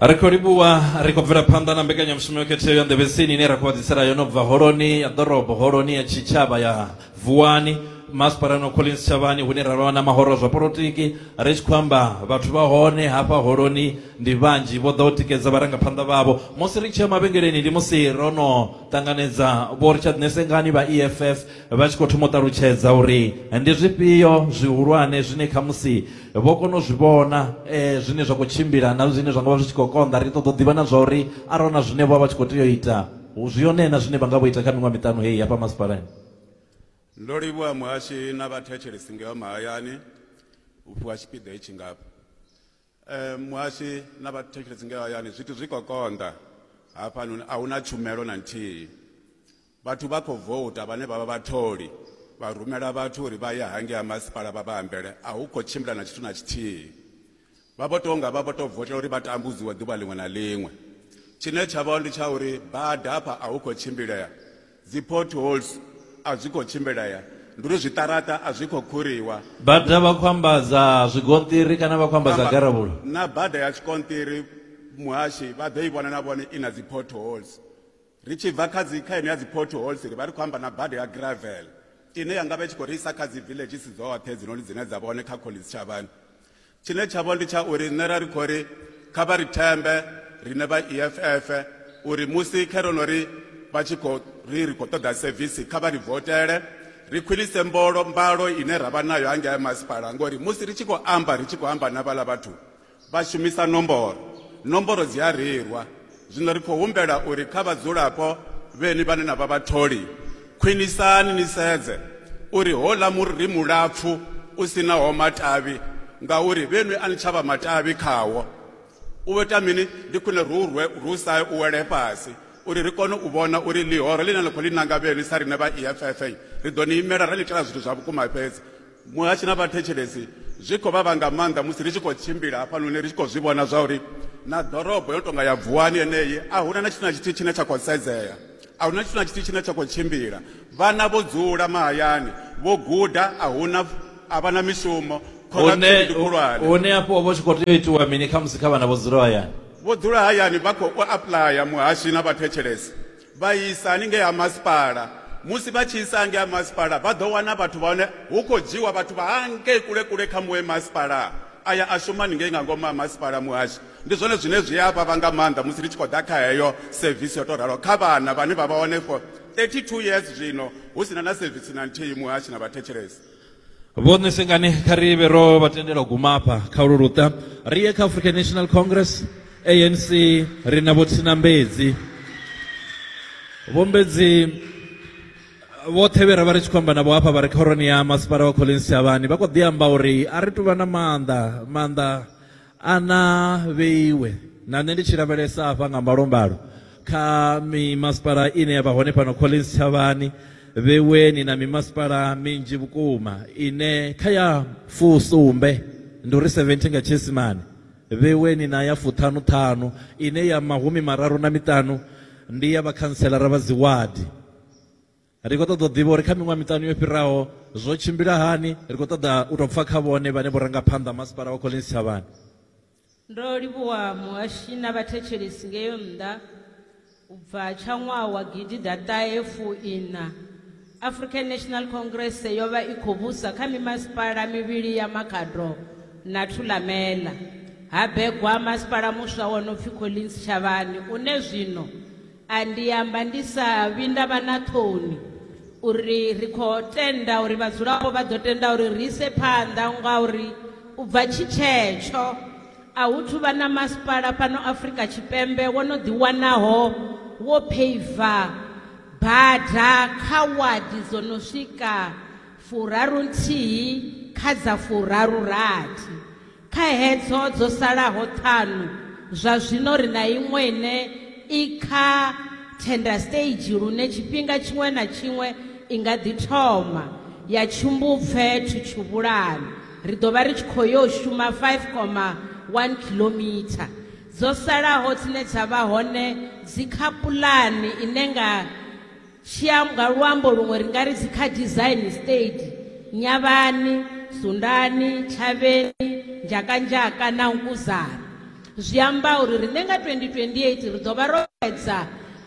ri khou livhuwa ri khou bvela phanḓa na mbekanyamushumo yo khetheaho ya nḓevhesini ine ra khou vhadzisela yo no bva holoni ya ḓorobo holoni ya tshitshavha ya vuwani masipala no collins tshavhani hune ra vha na mahoro zwa polotiki ri tshi khou amba vhathu vha hone hafha holoni ndi vhanzhi vho ḓa u tikedza vharangaphanḓa vhavho musi ri tshi ya mavhengeleni ndi musi ro no ṱanganedza vho richard nesengani vha eff vha tshi khou thoma u ṱalutshedza uri ndi zwifhio zwihulwane zwine khamusi vho kona u zwi vhona um zwine zwa khou tshimbila na zwine zwa nga vha zwi tshi khou konḓa ri ṱoḓa u ḓivha na zwa uri arali na zwine vha vha tshi khou tea u ita zwi yone na zwine vha nga vho ita kha miṅwaha miṱanu heyi hafha masipalani ndo livhuwa muhashi na vhathetshelesi ngeho mahayani u fhiwa tshipiḓa hetshi ngafha um muhashi na vhathetshelesi ngeho hayani zwithu zwi khou konḓa hafhanoni a hu na tshumelo na nthihi Vhathu vha khou vouta vhane vha vha vhatholi vha rumela vhathu uri vha ye hangei ha masipala vha vha ambele, a hu khou tshimbila na tshithu na tshithihi. Vha vho tou nga vha vho tou votela uri vha tambudziwe ḓuvha ḽiṅwe na ḽiṅwe. Tshine tsha vha ndi tsha uri bada hafha a hu khou tshimbilea, dzi potholes a zwi khou tshimbilea, ndi uri zwiṱaraṱa a zwi khou khuriwa. Bada vha khou amba dza zwigonṱiri kana vha khou amba dza garavhula? Na bada ya tshikonṱiri muhashi vha ḓo i vhona na vhone i na dzi potholes. Ri tshi bva kha dzi kha ine ya dzi potholes ri vha ri khou amba na bada ya gravel ine ya nga vha tshi khou ri isa kha dzi villages dzoṱhe dzinoni dzine dza vha hone kha Collins Tshavhani tshine tsha vho ndi tsha uri nṋe ra ri khou ri kha vha ri thembe rine vha EFF uri musi kherono ri vha tshi khou ri ri khou ṱoḓa sevisi kha vha ri votele ri khwinise mbolo mbalo ine ra vha nayo hangei masipala ngori musi ri tshi khou amba ri tshi khou amba na vhala vhathu Vha shumisa nomboro. Nomboro dzi a reilwa. Zwino ri khou humbela uri kha vhadzulapo vheni vhane na vha vhatholi, khwinisani ni sedze uri houḽa muri ri mulapfu u si naho matavhi ngauri vhenwi a ni tsha vha matavhi khawo. U ita mini? Ndi khwine ri u rwe uri u sa u wele fhasi uri ri kone u vhona uri ḽihoro ḽine na khou ḽi nanga vhenwi sa riṋe vha EFF ri ḓo ni imela ra ni itela zwithu zwa vhukuma fhedzi. Muhashi na vhathetshelesi zwi khou vhavha nga maanḓa musi ri tshi khou tshimbila hafhanoni ri tshi khou zwi vhona zwa uri na ḓorobo yo no tou nga ya Vuwani yeneyi a hu na na tshithu na tshithihi tshine tsha khou sedzea, a hu na tshithu na tshithihi tshine tsha khou tshimbila. Vhana vho dzula mahayani, vho guda, a hu na, a vha na mishumo, khonadzeo ndi khulwane. Hone afho ho vha hu tshi khou tea u itiwa mini khamusi kha vhana vho dzulaho hayani? Vho dzula hayani vha khou apuḽaya, Muhashi na vhathetshelesi vha isa haningei ha masipala musi vha tshi isa hangei ha masipala vha ḓo wana vhathu vha hone hu khou dzhiwa vhathu vha hangei kule kule kha muṅwe masipala aya a shuma ningei nga ngomu ha masipala muhashi ndi zwone zwine zwi a vhavha nga maanḓa musi ri tshi khou ḓa kha heyo sevisi yo tou ralo kha vhana vhane vha vha hone for 32 years zwino hu sina na sevisi na nthihi muhashi na vhathetshelesi vhone sengani kha ri vhe ro vha tendela u guma afha kha ulu luṱa ri ye kha african national congress anc ri na vho tsinambedzi vhombedzi vhoṱhe vhe ra vha ri tshi khou amba navho hafha vha re khoroni ya masipala wa collins shavhani vha khou ḓi amba uri a ri tuvha na maanḓa maanḓa A na vheiwe na nṋe ndi tshi lavhelesa hafha nga mbalombalo kha mimasipala ine ya vha hone fhano Collins Thavhani, vheweni na mimasipala minzhi vhukuma ine kha ya fusumbe, ndi uri 70 nga tshiisimane, vheweni na ya fuṱhanuṱhanu ine ya mahumi mararu na miṱanu ndi ya vhakhanselara vha dziwadi. Ri khou ṱoḓa u ḓivha uri kha miṅwaha miṱanu yo fhiraho zwo tshimbila hani. Ri khou ṱoḓa u tou pfa kha vhone vhane vho ranga phanḓa ha Masipala wa Collins Thavhani. Ndo livhuwa muhashi na vhathetshelesi ngeo nnḓa. U bva tsha ṅwaha wa gidiḓaṱahe fu iṋa, African National Congress yo vha i khou vhusa kha mimasipala mivhili ya Makhado na Thulamela. Ha begwa masipala muswa wo no pfi Collins Thavhani une zwino A Ndi amba ndi sa vhi nda vha na ṱhoni uri ri khou tenda uri vhadzulapo vha ḓo tenda uri ri ise phanḓa ngauri u bva tshi tshetsho a hu thu vha na masipala fhano Afrika Tshipembe wo no ḓiwanaho wo pheiva bada kha wadi dzo no swika furarunthihi kha dza furarurathi. Kha hedzo dzo salaho ṱhanu, zwa zwino ri na iṅwe ine i kha tender stage lune tshifhinga tshiṅwe na tshiṅwe i nga ḓi thoma ya tshumbupfe Thutshuvhulani. Ri ḓo vha ri tshi khou yo shuma 5.1 khiḽomitha dzo salaho dzine dza vha hone dzi kha pulani ine nga Tshia nga luambo luṅwe ri nga ri dzi kha design state Nyavhani, Sundani, Tshavheni, Njakanjaka na Nkuzana. Zwi amba uri riṋe nga 2028 ri ḓo vha ro fhedza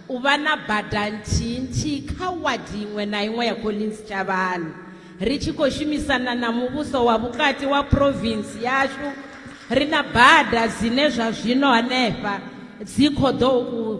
u vha na bada nthihi nthihi kha wadi iṅwe na iṅwe ya Collins Tshavhani ri tshi khou shumisana na muvhuso wa vhukati wa province yashu ri na bada dzine zwa zwino hanefha dzi khou ḓo u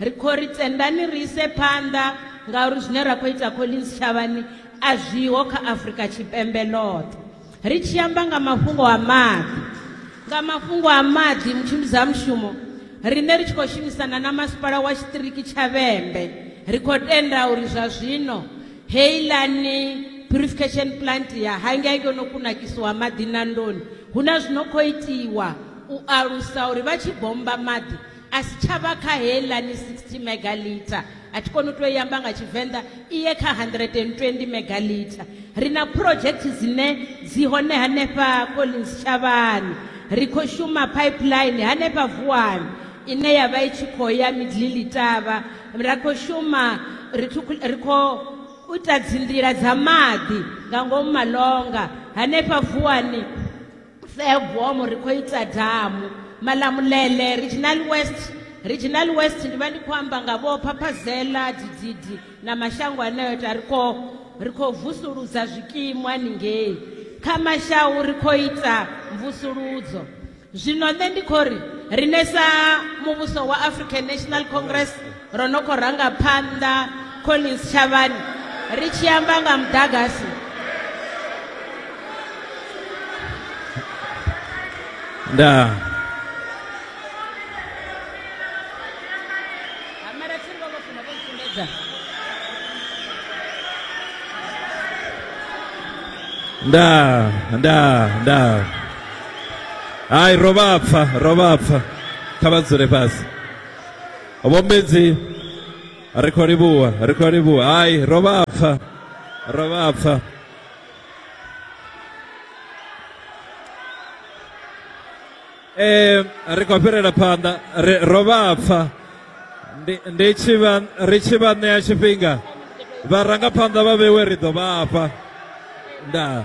Ri khou ri tendani ri ise phanḓa ngauri zwine ra khou ita Collins Shavhani a zwiho kha Afrika Tshipembe ḽoṱhe. Ri tshi amba nga mafhungo a maḓi, nga mafhungo a maḓi Mutshimbidzamushumo, riṋe ri tshi khou shumisana na Masipala wa Tshiṱiriki tsha Vhembe, ri khou tenda uri zwa zwino heiḽani purifikhesheni puḽanthe ya hangei yo no kunakisiwa maḓi Nandoni, hu na zwi no khou itiwa u alusa uri vha tshi bommba maḓi, a si tsha vha kha heiḽani 60 megalita a thi koni u tou yamba nga tshivenḓa iye kha 120 megalita ri na phurojekthi dzine dzi hone hanefha collins tshavhani ri khou shuma pipeline hanefha vuwani ine ya vha i tshi khou ya midlili tavha ra khou shuma ri khou u ita dzinḓila dza maḓi nga ngomu malonga hanefha vuwani Fairbomo ri khou ita damu Malamulele Regional West Regional West ndi vha ndi khou amba nga vho Phaphazela Dididi na mashango aneyo ta ri khou ri khou vusuludza zwikimu haningei kha mashau ri khou ita mvusuludzo zwino nṋe ndi khou ri rine sa muvhuso wa African National Congress ro no khou ranga phanḓa collins tshavhani ri tshi amba nga muḓagasi nda nda nda nda hai ro vha pfa ro vha pfa kha vha dzule fhasi Vho Mbedzi ri khou livhuwa ri khou livhuwa hai ro vha pfa ro vha pfa Eh ri khou fhirela phanḓa ri ro vha pfa ndi ndi tshi vha ri tshi vha ṋea tshifhinga vharangaphanḓa vha vhewe ri ḓo vha fha ndaa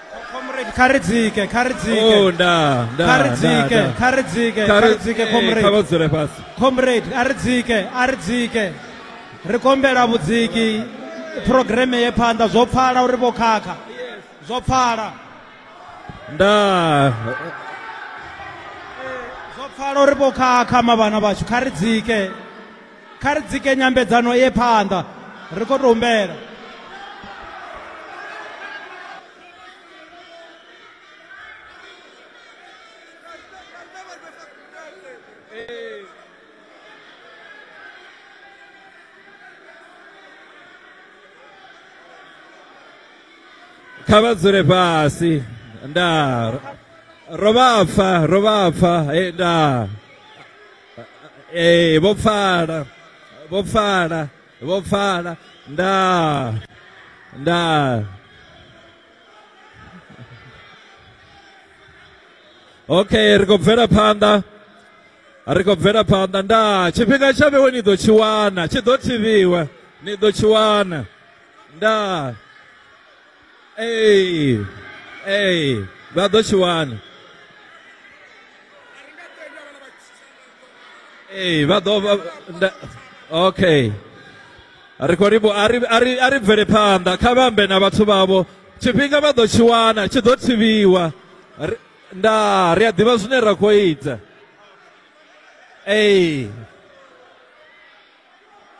comrade kha ri dzike kha ri dzike Oh, nda, nda, kha ri nda, dzike nda. kha ri dzike Kha kha ri ri- dzike eh, kha vha comrade dzule fhasi. comrade a ri dzike a ri dzike ri kombela vhudziki programe ye phanḓa zwo pfala uri vho khakha zwo pfala Nda, zwo pfala uri vho khakha mavhana vhashu kha ri dzike kha ri dzike nyambedzano ye phanḓa ri khou tou humbela kha vha dzule fhasi ndaa ro vha pfa ro vha pfa ndaa ee vho pfala vho pfala vho pfala nda nda okay ri khou bvela phanḓa ri khou bvela phanḓa nda tshifhinga tsha vhewe ni ḓo tshi wana tshi ḓo thivhiwa ni ḓo tshi wana nda Ee, ee, vha ḓo tshi wana. Ee, vha ḓo vha nda okay. Ri khou ri vho a ri a ri a ri bvele phanḓa kha vha ambe na vhathu vhavho tshifhinga vha ḓo tshi wana tshi ḓo thivhiwa. Ri- Nda ri a ḓivha zwine ra khou ita. Ee.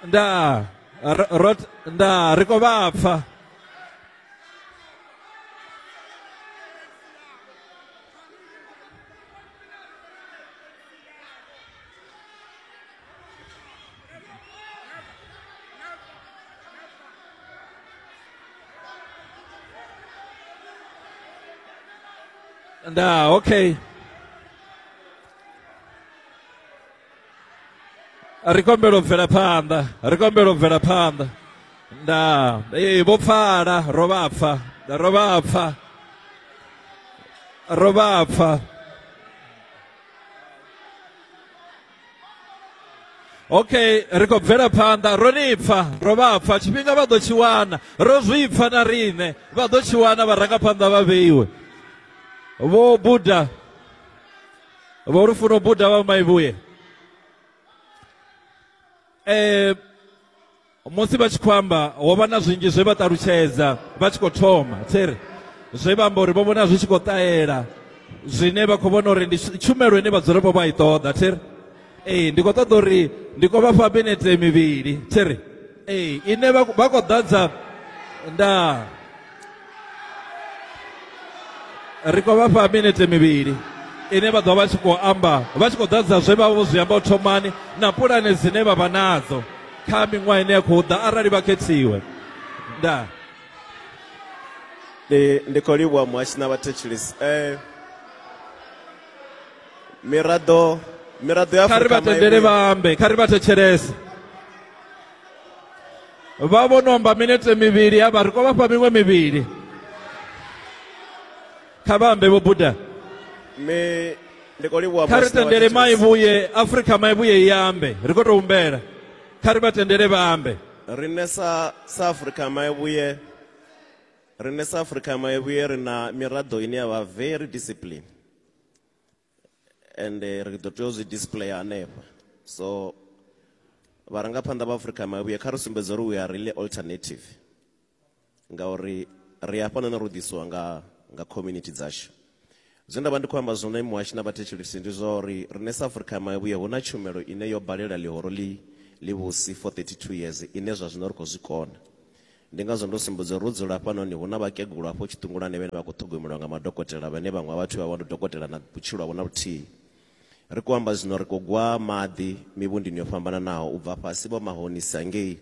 ndaa ro- ro ndaa ri khou vha pfa ndaa okay ri kombela u bvela phanḓa ri kombela u bvela phanḓa nda ee vho pfala ro vha pfa ro vha pfa ro vha pfa okay ri khou bvela phanḓa ro ni pfa ro vha pfa tshifhinga vha ḓo tshi wana ro zwi pfa na riṋe vha ḓo tshi wana vharangaphanḓa vha vheiwe vho buda vho ri funo buda vha maivhuye eh musi vha tshi khou amba ho vha na zwinzhi zwe vha ṱalutshedza vha tshi khou thoma tsere zwe vha amba uri vho vhona zwi tshi khou ṱahela zwine vha khou vhona uri ndi tshumelo ine vhadzulapo vha i ṱoḓa tsere ee ndi khou ṱoḓa uri ndi khou vha fha minete mivhili tsere ee ine vha vha khou ḓadza ndaa ri khou vha fha minete mivhili ine vha ḓo vha tshi khou amba vha tshi khou ḓadza zwe vha vho zwi amba u thomani na pulane dzine vha vha nadzo kha miṅwaha ine ya khou ḓa arali vha khethiwe ndaa ndi ndi khou livhuwa muhashi na vhathetshelesi um miraḓo miraḓo ya kha ri vha tendele vha ambe kha ri vha thetshelese vha vho no amba minete mivhili ya vha ri khou vhafha miṅwe mivhili kha vha ambe vho buda mme ndi khou livhuwa kha ri Master wa tendele Thithes. maivhuye afrika maivhuye i ambe ri khou tou humbela kha ri vha tendele vha ambe riṋe sa sa afrika maivhuye riṋe sa afrika maivhuye ri na miraḓo ine ya vha very discipline ende ri ḓo tea u zwi display hanefha so vharangaphanḓa vha Afrika Mavhuya kha ri sumbedze uri we are really alternative ngauri ri hafha none ro ḓisiwa nga nga community dzashu zwe nda vha ndi khou amba zwone muhashi na vhathetshelisi ndi zwa uri riṋe sa Afrika Mavhuya hu na tshumelo ine yo balela ḽihoro ḽi ḽivhusi for 32 years ine zwa zwino ri khou zwi kona Ndi ngazwo ndo sumbedza uri ro dzula hafhanoni hu na vhakegulu hafho tshiṱungulwani vhane vha khou ṱhogomelwa nga madokotela vhane vhaṅwe ha vhathu vha vha ndi dokotela na vhutshilo havho na vhuthihi. Ri khou amba zwino ri khou gwa maḓi mivhundini yo fhambananaho u bva fhasi Vho Mahonisa ngei,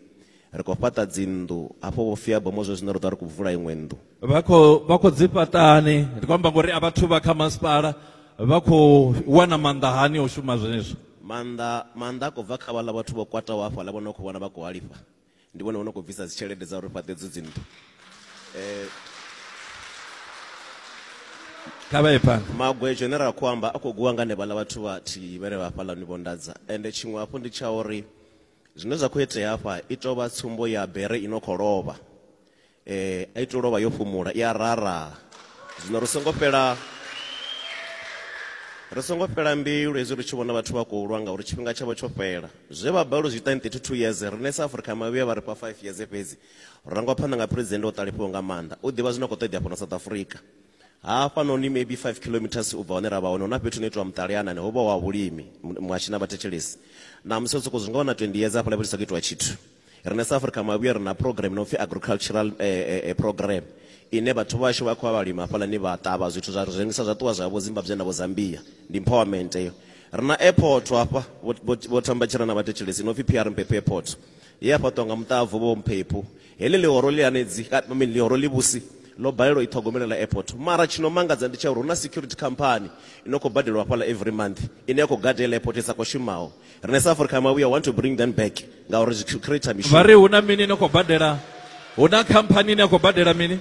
ri khou fhaṱa dzinnḓu hafho Vho Fiabomo zwe zwino ri ḓo vha ri khou vula iṅwe nnḓu. Vha khou vha khou dzi fhaṱa hani? Ndi khou amba ngori a vhathu vha kha masipala vha khou wana maanḓa hani o shuma zwenezwo? Maanḓa, maanḓa a khou bva kha vhaḽa vhathu vho kwataho hafhaḽa vho no khou vhona vha khou halifha. Ndi vhone vho no khou bvisa dzi tshelede dza uri ri fhaṱe edzo dzi nnḓu. Kha vha ye phanḓa. Magwejo ane ra khou amba a khou gwiwa nga hanevhaḽa vhathu vha thihi vhe re hafhaḽa ni vho nḓadza. Ende tshiṅwe hafhu ndi tsha uri zwine zwa khou itea hafha i tou vha tsumbo ya bere i no khou lovha. eh, a ito lovha yo fhumula i a raraha zwino ri songo fhela ri songo fhela mbilu hezwi ri tshi vhona vhathu vha khou lwa ngauri tshifhinga tshavho tsho fhela zwe vha balelwa zwi ita in 32 years rine sa afrika mavhuya vha ri fha 5 years fhedzi rangwa phanḓa nga president o ṱalifhiwa nga maanḓa u ḓivha zwino khou ṱoḓea fhano south africa hafha noni maybe 5 kilometers u bva hone ra vha hone huna fhethu no itiwa muṱaleanani ho vha wa vhulimi mwashi na vhathetshelesi na musi sokou zwi nga wana 20 years hafhaḽa fhethu sa khou itiwa tshithu Riṋe sa Afrika Mavhuya ri na program i no pfi Agricultural Program ine vhathu vhashu vha khou ya vha lima hafhaḽani vha ṱavha zwithu zwa rengisa zwa ṱuwa zwa ya vho Zimbabwe na vho Zambia. Ndi empowerment heyo. Ri na airport hafha Vho Themba Tshirana vha thetshelese i no pfi PR Mphephu Airport ye ya fhaṱiwa nga muṱavhu Vho Mphephu. Heḽi ḽihoro ḽi hanedzi, I mean ḽihoro ḽivhusi ḽo balelwa u i ṱhogomelela airport. Mara tshi no mangadza ndi tsha uri hu na security company i no khou badeliwa hafhaḽa every month ine ya khou gada heiḽa airport i sa khou shumaho. Rine sa Africa ma we want to bring them back ngauri zwi create mishumo. Vha ri huna mini no khou badela huna khamphani ine ya khou badela mini?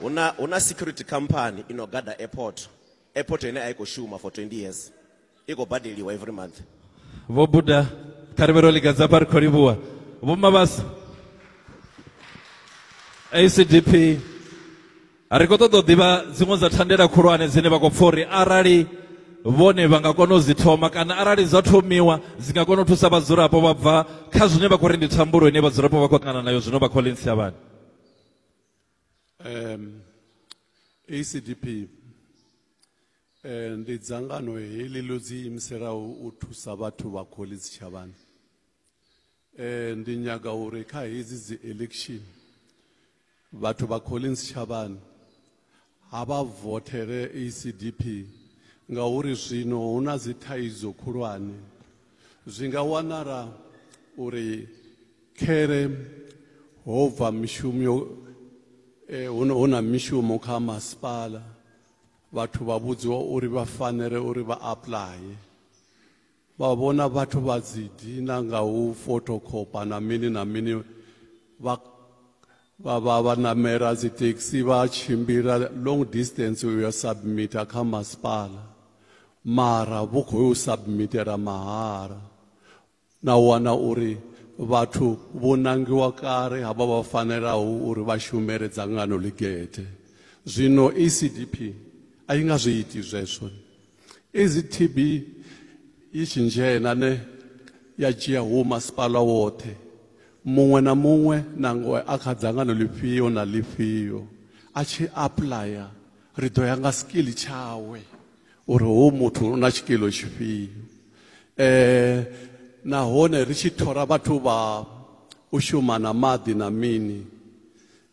Huna huna security company ino gada airport. Airport ine a i khou shuma for 20 years. I khou badeliwa every month. Vho Buda kha ri vhe ro liga dza fha ri khou livhuwa. Vho Mabasa ACDP Ri khou ṱoḓa u ḓivha dziṅwe dza thandela khulwane dzine vha khou pfha uri arali vhone vha nga kona u dzi thoma kana arali dza thomiwa dzi nga kona u thusa vhadzulapo vha bva kha zwine vha khou ri ndi thambulo ine vhadzulapo vha khou ṱangana nayo zwino vha Collins Siyavhani. Um, ACDP eh, ndi dzangano heḽi ḽo dzi imiselaho u thusa vhathu vha Collins Siyavhani. Eh ndi nyaga uri kha hedzi dzi election vhathu vha Collins Shavhani ha vha vothere ACDP ngauri zwino hu na dzi thaidzo khulwane zwi nga wanala uri khere ho bva mishumo eh, hu na- hu na mishumo kha masipala vhathu vha vhudziwa uri vha fanele uri vha aplaye Vha vhona vhathu vha dzi dina nga u fothokhopha na mini na mini vha vha vha vha namela dzi taxi vha tshimbila long distance u ya submita kha masipala mara vhu khou u submitela mahala na wana uri vhathu vho nangiwa kale havha vha fanelaho uri vha shumele dzangano ḽigethe zwino ECDP a i nga zwi iti zwezwo Is it TB yi tshi dzhena ne ya dzhia hu masipala woṱhe muṅwe na muṅwe nangwe a kha dzangano ḽifhio na ḽifhio a tshi apuḽaya ri ḓo ya nga skill tshawe uri hoyu muthu u na tshikilo tshifhio um nahone ri tshi thora vhathu vha u shuma na maḓi na mini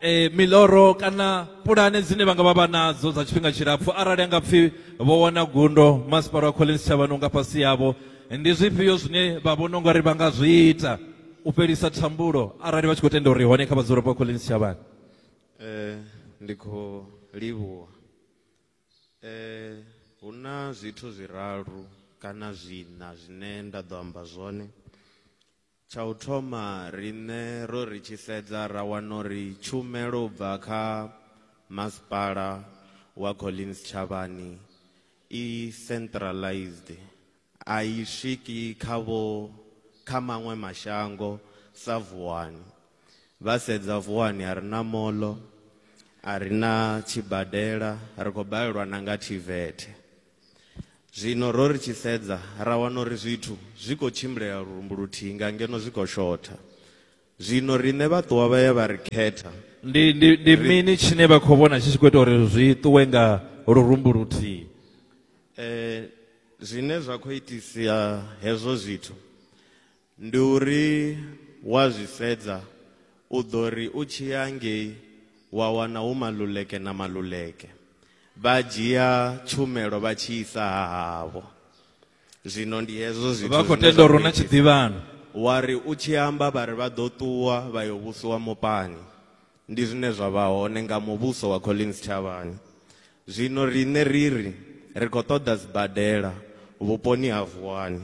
e, miḽoro kana pulane dzine vha nga vha vha nadzo dza tshifhinga tshilapfhu arali a nga pfhi vho wana gundo masipala wa collins tshavhani unga fhasi yavho ndi zwifhio zwine vha vhona ungari vha nga zwi ita u fhelisa thambulo arali vha tshi khou tenda uri hone kha vhadzulapo wa collins tshavhani um ndi khou livhuwa um hu na zwithu zwiraru kana zwiṋa zwine nda ḓo amba zwone Tsha u thoma, riṋe ro ri tshi sedza ra wana uri tshumelo u bva kha Masipala wa Collins Tshavhani i centralised, a i swiki kha vho kha maṅwe mashango sa Vuwani. Vha sedza Vuwani a ri na moḽo, a ri na tshibadela, ri khou balelwa na nga TVET. Zwino ro ri tshi sedza, ra wana uri zwithu zwi khou tshimbilela lurumbu luthihi nga ngeno zwi khou shotha. Zwino riṋe vhaṱuwa vha ye vha ri khetha. Ndi, ndi, ndi Ri- mini tshine vha khou vhona tshi tshi khou ita uri zwi ṱuwe nga lurumbu luthihi? Eh, zwine zwa khou itisa hezwo zwithu Ndi uri wa zwi sedza u ḓo ri u tshi ya ngei wa wana hu Maluleke na Maluleke vha dzhia tshumelo vha tshi isa ha havho. Zwino ndi hezwo zwithu Vha khou zwine tenda zwa uri hu khou na itea. tshiḓivhano. Wa ri u tshi amba vha ri vha ḓo ṱuwa vha yo vhusiwa mupani. Ndi zwine zwa vha hone nga muvhuso wa Collins Tshavhani. Zwino riṋe ri ri ri khou ṱoḓa sibadela vhuponi ha Vuwani,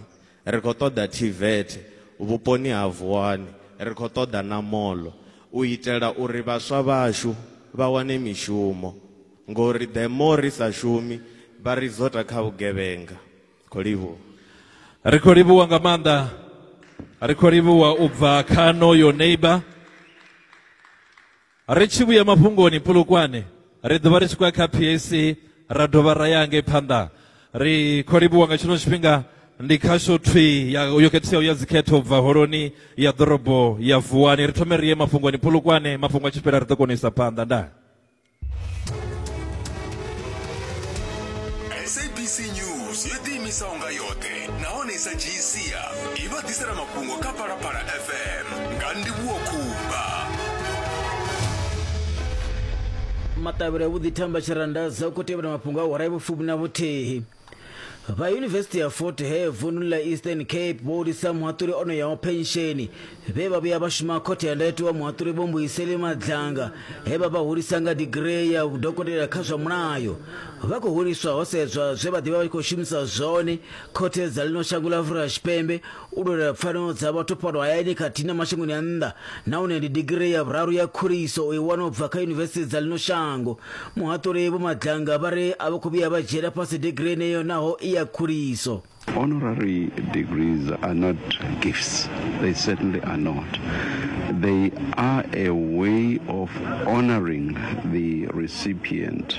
ri khou ṱoḓa TVET vhuponi ha Vuwani, ri khou ṱoḓa na moḽo u itela uri vhaswa vhashu vha wane mishumo ngori the more ri sa shumi vha ri zota kha vhugevhenga. khou livhuwa ri khou livhuwa nga maanḓa ri khou livhuwa u bva kha noyo neighbor ri tshi vhuya mafhungoni pulukwane ri ḓovha ri tshi khou ya kha pac ra dovha ra ya ngei phanḓa ri khou livhuwa nga tshino tshifhinga ndi khasho thwi ya- yo khetheaho ya dzikhetho u bva holoni ya ḓorobo ya vuwani ri thome ri ye mafhungoni pulukwane mafhungo a tshi fhela ri ḓo kona u isa phanḓa ndaa sabc news yo ḓiimisa unga yoṱhe nahone i sa dzhii sia i vha ḓisela mafhungo kha phalaphala fm nga ndivhuwo khumba maṱavhelo a vhuḓi thamba tshirandaza u khou tevhela mafhungo a hora ya vhufumi na vhuthihi vha yunivesithi ya fort hare vundu la eastern cape vho hulisa muhaṱuli o no yaho pensheni vhe vha vhuya vha shuma khothe ya ndayotewa wa muhaṱuli vho mbuyiseli madzanga he vha vha hulisa nga digiree ya dokotela kha zwa mulayo vha khou huliswa ho sedzwa zwe vha ḓivha vha tshi khou shumisa zwone khothe dza ḽino shango ḽa afurika tshipembe u lwela pfanelo dza vhathu fhano hayani khathihi na mashangoni a nnḓa nahone ndi digirii ya vhuraru ya khuliso o i wana u bva kha yunivesithi dza ḽino shango muhaṱuli vho madlanga vha ri a vho khou vhuya vha dzhiela fhasi digirii yeneyo naho i ya khuliso Honorary degrees are not gifts. They certainly are not. They are a way of honoring the recipient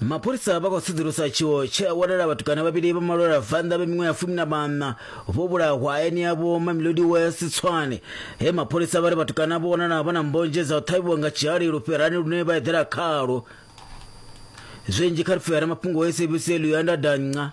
mapholisa vha khou sedzulusa tshiwo tshe a wanala vhatukana vhavhili vha malwela a bvannḓa vha miṅwe ya fumi na maṋa vho vhulahwa hayani yavho mamelodi west tswane he mapholisa vha ri vhatukana vho wanala vha na mbonzhe dza u ṱhavhiwa nga tshihali lufherani lune vha eḓela khalwo zwinzhi kha lufhera mafhungo a sabc luyanda danca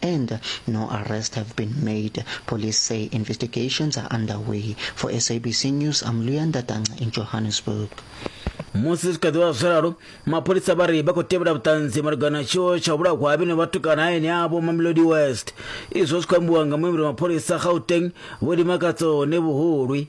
and no arrests have been made. Police say investigations are underway. For SABC News, I'm Luyanda Tanga in Johannesburg. musi zwi kha ḓivha zwo ralo mapholisa vha ri vha khou tevhela vhuṱanzi malugana na tshiwo tsha vhulawa ha vhene vhatukana hayani avho mamelodi west izwo zwi khou ambiwa nga muimbeli mapholisa gauteng vho limakatso ne vhuhulwi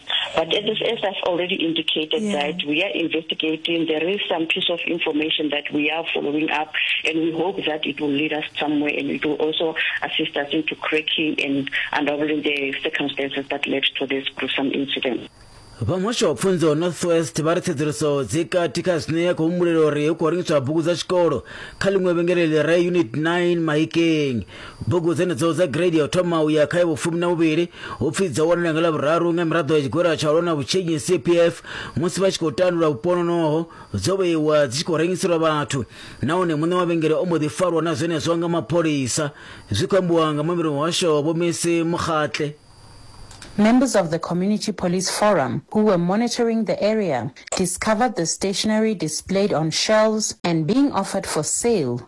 But as, as I've already indicated yeah. that we are investigating, there is some piece of information that we are following up and we hope that it will lead us somewhere and it will also assist us into cracking and unraveling the circumstances that led to this gruesome incident. vha muhasho wa pfunzo northwest vha ri tsedzuluso dzi kati kha zwine ya khou humbulela uri hu khou rengiswa bugu dza tshikolo kha ḽiṅwe vhengeleli ra unit 9 mahikeng Bugu dzenedzo dza gireidi ya u thoma u ya kha ya vhufumi na vhuvhili hu pfi dzo wanala nga Ḽavhuraru nga miraḓo ya Tshigwera tsha u lwa na Vhutshinyi, CPF, musi vha tshi khou tandula vhupononoho, dzo vheiwa dzi tshi khou rengiselwa vhathu nahone muṋe wa vhengele o mbo ḓi farwa na zwenezwo nga mapholisa, zwi khou ambiwa nga muambeli wa muhasho Vho Messi Mokgatle. Members of the Community Police Forum who were monitoring the area discovered the stationery displayed on shelves and being offered for sale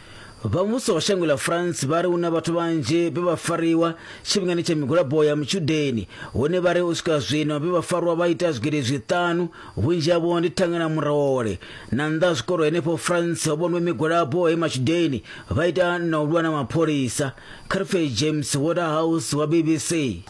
Vha muvhuso wa shango ḽa France vha ri hu na vhathu vhanzhi vhe vha fariwa tshifhingani tsha migwalabo ya mutshudeni hone vha ri u swika zwino vhe vha farwa vha ita zwigidi zwiṱanu vhunzhi havho ndi thanga na murole na nnḓa ha zwikolo henefho France ho vhonwe migwalabo he matshudeni vha ita na u lwa na mapholisa Carfe James Waterhouse wa BBC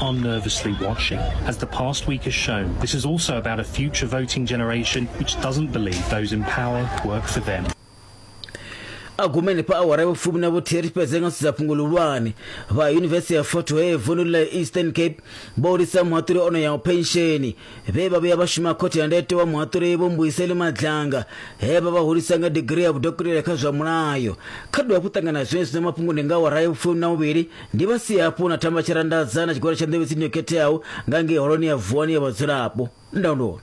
are nervously watching. As the past week has shown, this is also about a future voting generation which doesn't believe those in power work for them. agumeni pa awara ya vhufumi na vhuthihi ri fhedze nga sedza fhungo ḽihulwane vha yunivesithi ya fort hare vundu la eastern cape vho lisa muhaṱuli ono yaho pensheni vhe vha vhuya vha shuma khothe ya ndete wa muhaṱuli vho mbuyiseli madlanga he vha vha hulisa nga digiri ya vhudokotela kha zwa mulayo kha dovha hafhu ṱangana zwenezwi na mafhungo ndi nga awara ya vhufumi na vhuvhili Ndi vha si hafhu na thamba tshirandaza na tshigwada tsha nḓevhe tsini yo khetheaho nga ngei holoni ya vuwani ya vhadzulapo ndondoni